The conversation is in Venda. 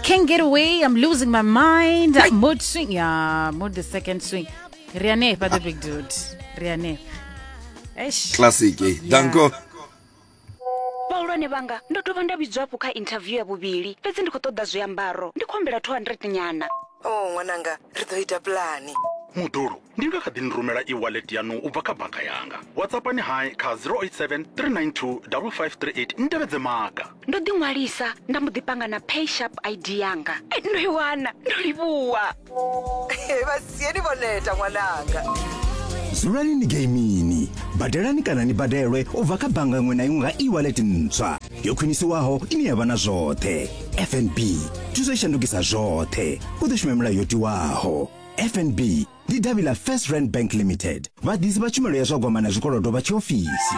Can't get away, I'm losing my mind. Mood swing. Yeah, mood the second swing. Riane, but the big dude. Riane. Eish. classic eh danko vhahulwane vhanga ndo dovha nda vhidzwa hafhu kha interview ya vhuvhili fhedzi ndi khou ṱoḓa zwiambaro ndi khou humbela 200 nyana o ṅwananga ri ḓo ita pulani mudulo ndi nga kha ḓi ni rumela e-wallet yanu u bva kha bannga yanga whatsappani hai kha 087 392 5538 ni tevhedze maga ndo ḓi ṅwalisa nda mbo ḓi panga na pay sharp id yanga eh, ndo i wana ndo livhuwa eh, vha sieni vho neta ṅwananga dzulani ni geimini badelani kana ni badelwe u bva kha bannga iṅwe na iṅwe nga e-wallet ntswa yo khwinisiwaho ine ya vha na zwoṱhe fnb thuso i shandukisa zwoṱhe u ḓo shuma milayo yo tiwaho fnb ndi davhi ḽa first rand bank limited vhaḓisi vha tshumelo ya zwa gwama na zwikolodo vha tshiofisi